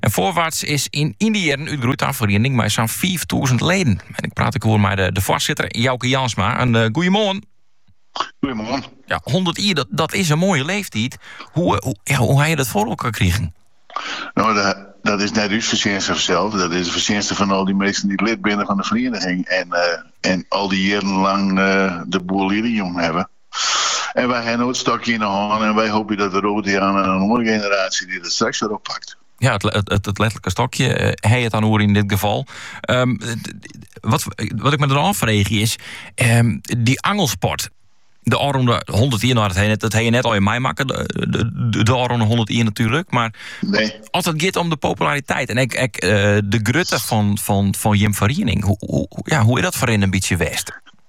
En Voorwaarts is yn dy jierren útgroeid ta in feriening mei sa'n fiiftûzen leden. En ik praat ek oer mei de, de foarsitter Jouke Jansma. Een uh, goeiemoarn. Goeiemoarn. Ja, 100 jier, dat, dat is in moaie leeftyd. Hoe, eh, hoe, ja, hoe ha je dat foar elkoar krigen? No, de, dat is net ús fertsjinste sels. Dat is de fertsjinste fan al dy minsken dy't lid binne fan de feriening. En, eh, en al dy jierren lang eh, de boel hjir hawwe. En wy ha no it stokje yn 'e hân en wy hoopje dat de Rotianen en in oare generaasje dy dat straks wer oppakt. Ja, it, it, het letterlijke stokje, eh, hij het aan oer in dit geval. Ehm, wat, wat ik me dan afvraag is, ehm, die angelsport, de Aronde 101 had het, dat hij je net al in mij maken, de, de, de Aronde 101 natuurlijk. Maar nee. als het gaat om de populariteit en ik, ik eh, de grutte van, van, van Jim Veriening, hoe, hoe, ja, hoe is dat voor een beetje west?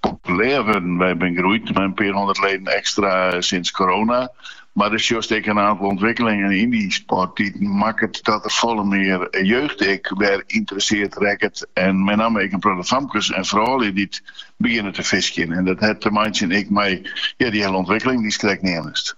populêr wurden. Wy binne groeid mei in pear hûndert leden ekstra sinds corona. Mar do sjochst ek in aantal ûntwikkelingen yn dy sport dy't makket dat der folle mear jeugd ek wer ynteresseerd rekket en met namme ek in protte famkes en froulju dy't begjinne te fiskjen. En dat hat te meitsjen ek mei dy hiele ûntwikkeling dy'tst krekt neamdest.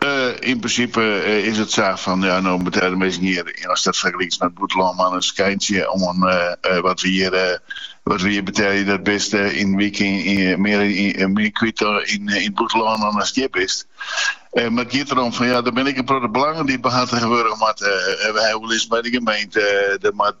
Yn prinsipe is it sa fan ja, no moatte de minsken hjir, ast dat fergelykst mei it bûtenlân, mar in skyntsje oan wat we hjir betelje. Dat bist yn in wike mear kwyt yn it bûtenlân dan ast hjir bist. Mar it giet derom fan ja, der binne ek in protte belangen dy't behartige wurde moatte. We ha oerlis mei de gemeente, der moat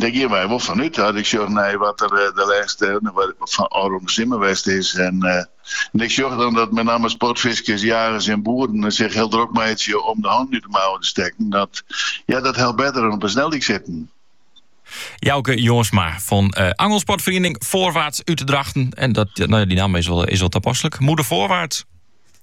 Dêr geane wy wol fan út. As ik sjoch nei wat der de lêste ôfrûne simmer west is en ik sjoch dan dat mei namme sportfiskers, jagers en boeren sich hiel drok meitsje om de hannen út de mouwen te stekken, dat helpt better dan op 'e sneldyk sitten. Jouke Jongsma fan uh, eh, angelsportferiening Voorwaarts út Drachten. En dat, no ja, dy namme is wol, is wol tapasselik. Moedig voorwaarts.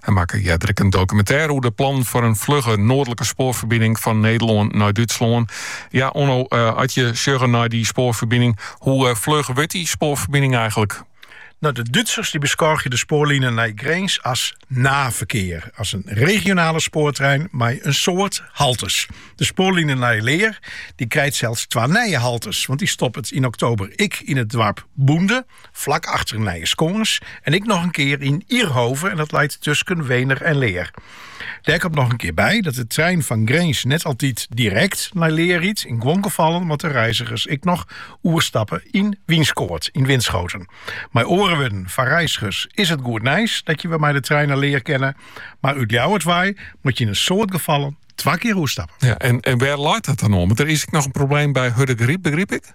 Hy makke earder ek in dokumintêr oer de plannen foar in flugge noardlike spoarferbining fan Nederlân nei Dútslân. Ja, Onno, eh, as je sjogge nei dy spoarferbining, hoe eh, fluch wurdt dy spoarferbining eigentlik? No, de Dútsers dy beskôgje de spoarline nei Grins as Nahverkehr, as in regionale spoartrein mei in soad haltes. De spoarline nei Leer dy krijt sels twa nije haltes, want dy stoppet yn oktober ek yn it doarp Bunde Flak achter Nijeskâns en ek noch in kear yn Ihrhove en dat leit tusken Weener en Leer. Dêr komt noch in kear by dat de trein fan Grins net altyd direkt nei Leer rydt. Yn guon gefallen moatte reizigers ek noch oerstappe yn Wynskoat, yn Winschoten. Mei oare wurden, foar reizigers is it goed nijs dat je wer mei de trein nei Leer kinne, mar út Ljouwert wei moat je yn in soad gefallen twa kear oerstappe. Ja, en, en wêr leit dat dan oan? Want der is ek noch in probleem by Hurdegaryp, begryp ik?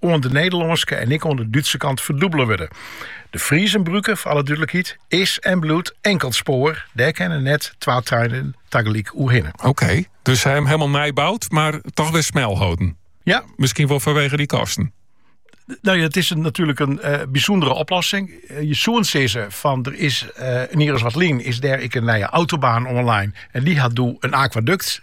oan de Nederlânske en ek oan de Dútse kant ferdûbele wurde. De Friesenbrücke, foar alle dúdlikheid, is en bliuwt inkeld spoar. Dêr kinne net twa treinen tagelyk oer hinne. Oké, dus sy ha him hielemaal nij boud, mar toch wer smel holden. Ja. Miskien wol fanwege dy kosten. No ja, it is natuerlik in eh, bysûndere oplossing. Eh, je soenen sizze fan der is uh, in jier as wat lyn, is dêr ek in nije autobaan oanlein. En dy hat doe in akwadukt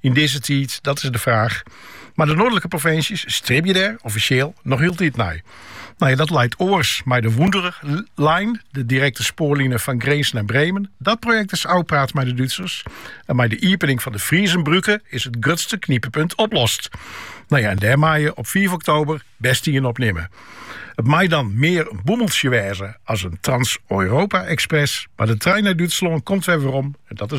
Yn dizze tiid, dat is de fraach. Mar de noardlike provinsjes stribje dêr offisjeel noch hieltyd nei. Nou ja, dat leit oars mei de Wunderline, de direkte spoarline fan Grins nei Bremen. Dat projekt is ôfpraat mei de Dútsers en mei de iepening fan de Friezenbrücke is it grutste knyppunt oplost. Nou ja, en dêr mei je op fiif oktober best ien op nimme. It mei dan mear in bûmeltsje wêze as in Trans-Europa-Express, mar de trein nei Dútslân komt wer werom en dat is